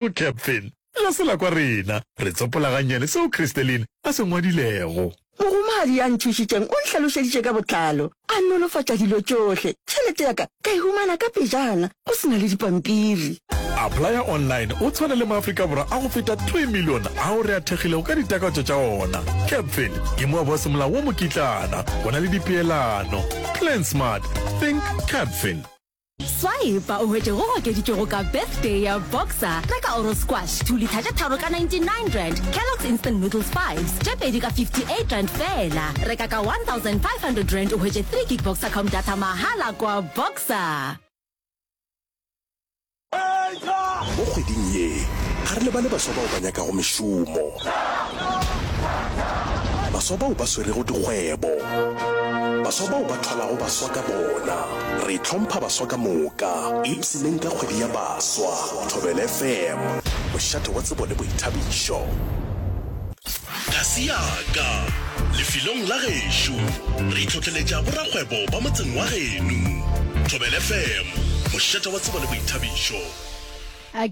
O Kepfel, ga se la kwa rena. Re tsopola gannyane seo Christelin a se ngwadilego. Mohumagadi ya nthušitšeng o nhlalošeditše ka botlalo, a nolofatša dilo tšohle. Tšhelete ya ka ka e humana ka pejana, go se na le dipampiri. Applya Online o tshwana le Maafrika Borwa a go feta three million ao re a thekgilego ka ditakatso tša ona. Kepfel ke moabo wa semolao wo mokitlana, go na le dipeelano. Plan Smart, Think Kepfel. Swipe-a o hwetše go okeditšwego ka Birthday ya Boxer, reka Oro Squash 2 litha tše tharo ka R99, Kellogg's Instant Noodles 5 tše pedi ka R58 feela, reka ka R1,500 o hwetše 3 gig Boxercom data mahala kwa Boxer. Mo kgweding ye, ga re lebale baswa bao ba nyakago mešomo, baswa bao ba swerego dikgwebo, baswa bao ba thwalago baswa ka bona. Re hlompha baswa ka moka, ipshineng ka kgwedi ya baswa. Thobel FM, mošate wa tsebo le boithabišo. Kasi ya ka, Lefelong la gešo. Re itlhohleletša borakgwebo ba motseng wa geno. Thobel FM, mošate wa tsebo le boithabišo.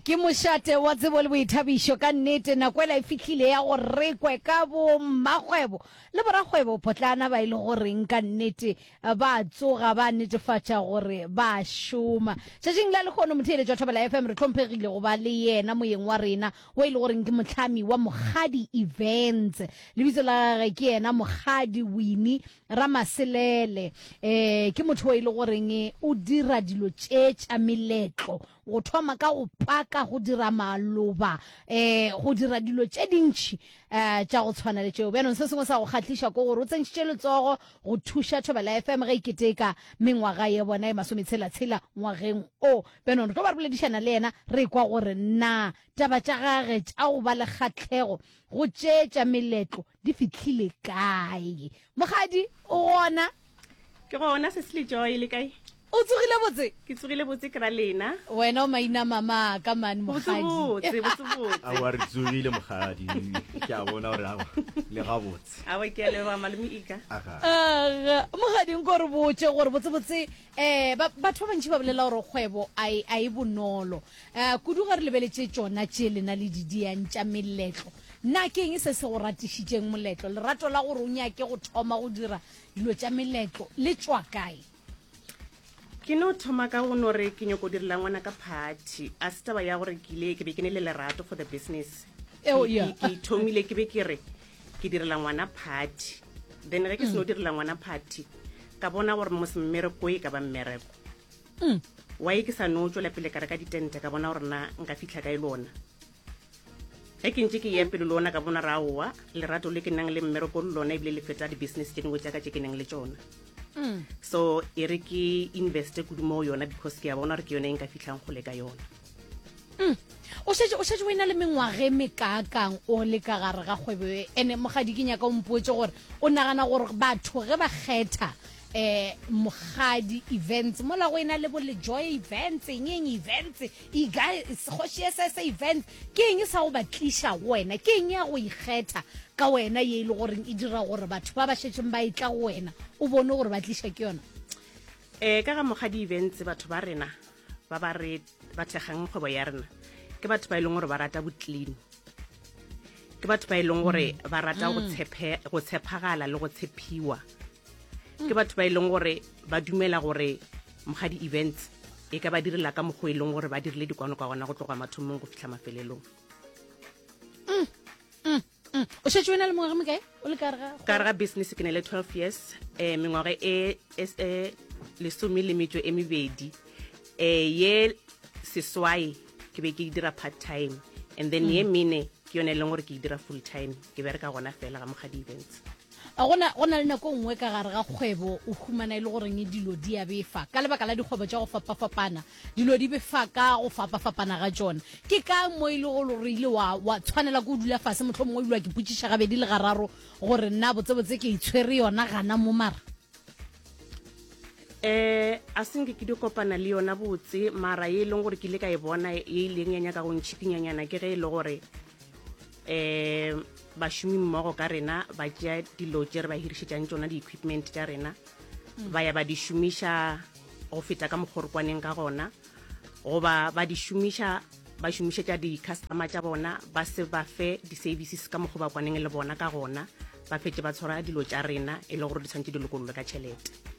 Ke mošate wa tsebo le boithabišo ka nnete. Nako ela e fihlile ya gore re kwe ka bo mmakgwebo le borakgwebo potlana ba e le goreng ka nnete ba tsoga ba netefatša gore ba šoma tšatšing la lekgono motheeletšwa thobela fm re tlhomphegile go ba le yena moyeng wa rena o e le goreng ke motlhami wa mokgadi events lebitso la gage ke yena mokgadi wini ramaselele um ke motho o e le goreng o dira dilo tše tša meletlo go thoma ka go paka go dira maloba um go dira dilo tše dintšhi um tša go tshwana le tšeo bjanong se sengwe sa go kgatliša ko gore o tsentšhitše letsogo go thuša thobela fm ge e keteka mengwaga ye bona e masometshela-tshela ngwageng o bjanong re tlo ba re boledišana le yena re kwa gore na taba tša gage tša go ba le kgatlhego go tšeetša meletlo di fitlhile kae mogadi o gona ke gona se se le joy le kae o tsogile botse ke tsogile botse ke ra lena wena o maina mama ka mane mogadi a re tsogile mogadi ke a bona gore awa le ga botse awa ke a leba malome ika aga mogading ko re botse gore botse botse Eh, ba, batho ba bantši ba bolela gore kgwebo a e, a e bonolo uh, kudu ge re lebeletše tšona tše lena le di diyang tša meletlo na ke eng se se go ratišitšeng moletlo lerato la gore o nyake go thoma go dira dilo tša meletlo le tšwa kae ke no thoma ka go no re ke nyoko direla ngwana ka party a se taba ya gore ke ile ke be ke ne le lerato for the business eo ke thomile ke be ke re ke direla ngwana party then ge ke seno direla ngwana party ka bona gore mmereko e ka ba mmereko mm. wa e ke sa no tswela pele ka reka ditente ka bona gore na nka fitlha ka e lona ge ke ntse ke ya pele le ona ka bona ra owa lerato le ke nang le mmereko le lona ebile le feta di-business tse dingwe tsaka tse ke nang le tsona mm. so e re ke investe kudu mo yona because ke ya bona gore ke yone e nka fitlhang gole ka yona mm. o šetše o šetše o ena le mengwage mekaakang o le ka gare ga kgwebo e ene mogadi ke nyaka o mpotse gore o nagana gore batho ge ba kgetha eh mogadi events mola go ena le bo le joy events eng eng events e guys go she sa sa events ke eng e sa go batlisha go wena ke eng ya go ikgetha ka wena ye ile e gore e dira gore batho ba ba shetseng ba itla go wena o bone gore ba tlisha ke yona eh ka ga mogadi events batho ba rena ba ba re ba thekgang kgwebo ya rena ke batho ba e leng gore ba rata botlini ke batho ba e leng gore ba rata go mm. tshepagala le go tshephiwa ke batho ba e leng gore ba dumela gore moga di-events e ka ba direla ka mokgwa e leng gore ba dirile dikwano kwa gona go tloga mathomong go fitlha mafelelong mm, mm. Mm. o šetse o na le mengwaga mekae o le kare ga business ke ne le 12 years um mengwaga e, e, e lesome le metso e mebedi um ye seswai ke be ke dira part time and then ye mm. mene ke yone e leng gore ke e dira full time ke bereka gona fela ga mokga di-events A go na, go na le nako e nngwe ka gare ga kgwebo o humana e le goreng dilo di a befa ka lebaka la dikgwebo tša go fapafapana, dilo di befa ka go fapafapana ga tšona. Ke ka mo e lego gore o ile wa, wa tshwanela ke go dula fase, mohlomongwe o ile wa ke potšiša gabedi le gararo gore na botsebotse ke itshwere yona gana mo mara. Eh, a se nke ke di kopana le yona botse, mara ye e leng gore ke ile ka e bona ye e ileng ya nyaka go ntšhikinyanyana ke ge e le gore um bašomi mmogo ka rena ba tšea dilo tše re ba hirišetšang tšona di-equipment tša rena mm. ba ya ba di šomiša go feta ka mokgorokwaneng ka gona goba ba di šomiša ba šomišetša di-customer tša bona ba se ba fe di-services ka mokgwa ba kwaneng le bona ka gona ba fetse ba tshwara dilo tša rena e le gore di tshwanetse di lokololwe ka tšhelete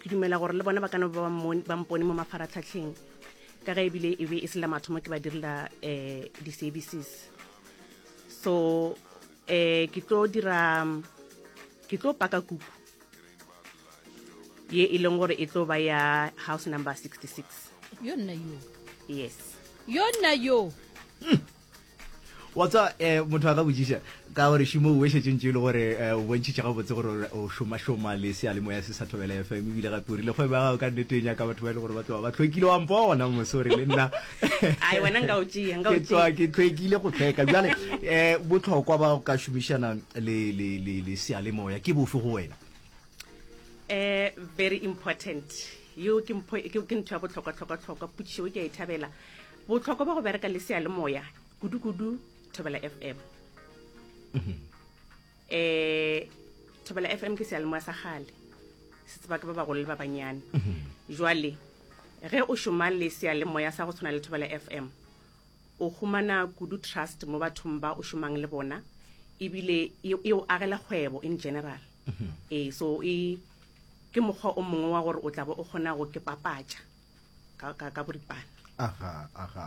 ke dumela gore le bona ba kana ba ba mpone mo mafaratlhatlheng ka ge ebile e be e se la mathomo ke ba direla um di-services so um ke tlo dira ke tlo paka kuku ye e leng gore e tlo ba ya house number 66 yo nna yo yes yo nna yo hmm. wa tsa um motho a ka botsiša ka gore šimo o wešetsentše e le gore um o bontšhitše gabotse gore o šomašoma le sealemoya se sa thobela fm ebile gape o rile kgwebo ya gago ka nnete e nyaka batho ba e le gore ba tloba ba tlhwekile wa mpo gona mosore le nna ke tswa ke tlhwekile go tlhweka jale um botlhokwa ba go ka šomišana le sealemoya ke bofe go wena um very important yo ke ntho ya botlhokwa-tlhokwa-tlhokwa potšišo ke a e thabela Bohlokwa ba go bereka le seyalemoya kudu-kudu Thobela FM. Mhm. Eh Thobela FM ke seyalemoya sa gale. Se tseba ke ba bagolo le ba banyane. Mhm. Jwale ge o šoma le seyalemoya sa go tshwana le Thobela FM o humana kudu trust mo bathong ba o šomang le bona ebile e, e o agela kgwebo in general. Mhm. Eh so e ke mokgwa o mongwe wa gore o tla bo o kgona go ke papatša. ka, ka, ka boripana aga aga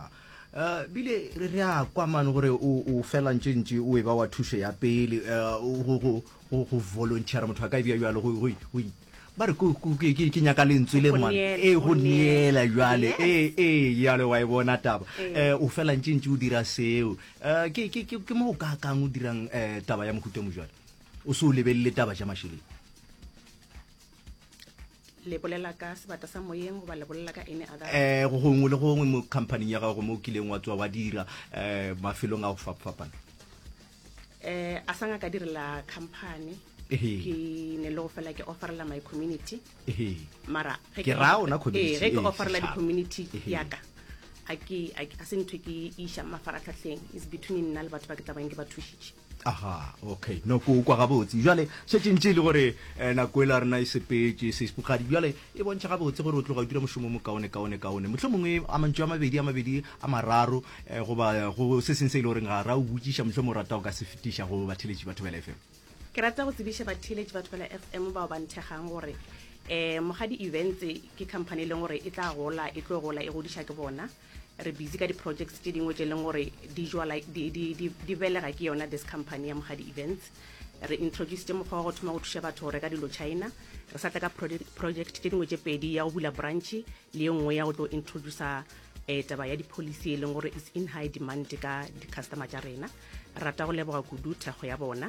uh, bile re re a kwa mane gore o fela ntše ntše o e ba wa thušo ya pele eh, go volunteera motho a ka ebja jalo ba re ke nyaka lentswe le ngwana ee go neela jale ee ee jale wa e bona taba um o fela ntše ntše o dira seo um ke mo o ka kang o dirang um taba ya mohuta mojale o se o lebelele taba ja mašeleng Le bolela ka sebata sa moyeng goba le bolela ka any other? Eh, go gongwe le gongwe mo companying ya gago mo o kileng wa tswa wa dira eh mafelong a go fapafapana. Eh, a sa ngaka direla company. Ehe. Ke ne le go fela ke offerela my community. Ehe. Mara ge Ke ra ona community, Eh, ge ke eh, offerela setšhaba. di-community Ehe. ya ka. A ke a ke- a se ntho e ke e iša mafaratlhatlheng. It's between nna le batho ba ke tla bang ke ba thušitše. Aha, okay, no ko kwa gabotse. Jwale, šetše ntše e le gore eh, nako ela rena e sepetše, seispokgadi. Jwale, e bontšha gabotse gore o tloga o dira mošomo o mokaone, kaone, kaone. Mohlho mongwe a mantšu a mabedi, a mabedi, a mararo, eh, goba go se seng se e le goreng ga ra o botšiša, mohlho mo rata o ka se fetiša go batheletši ba Thobela FM. Ke rata go tsebiša batheletši ba Thobela FM bao ba nthegang gore eh, Mogadi Events ke company e leng gore e tla gola, e tlo gola, e godiša ke bona. re busy ka di-projects tše dingwe tše e leng gore di jwala di, di, di, di belega ke yona this company ya mogadi events re introduced mokgwa wa go thoma go thuša batho go reka dilo china re sa tla ka project tše dingwe tše pedi ya go bula branch le ye nngwe ya go tlo introducer um taba ya di-policy e leng gore is in high demand ka di-customer tša rena rata go leboga kudu thekgo ya bona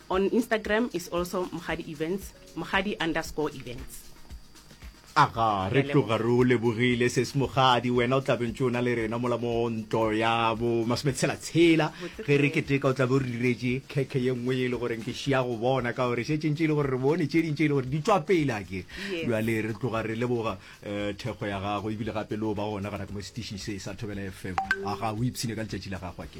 On Instagram is also Mokgadi Events, Mokgadi underscore Events. Aga, re tloga re o lebogile ses Mokgadi, wena o tlabe ntse o na le rena mola mo ntlo ya bo masometshela-tshela. Ge re keteka o tlabe o re diretše khekhe ye nngwe e le goreng ke šia go bona ka gore šetše ntše e le gore re bone tše ding tše e le gore di tšwa pele a ke bjale re tloga re leboga um thekgo ya gago ebile gape le o ba gona gona ka mo setišing se sa Thobela FM. Aga, o ipshine ka letšatši la gago a ke.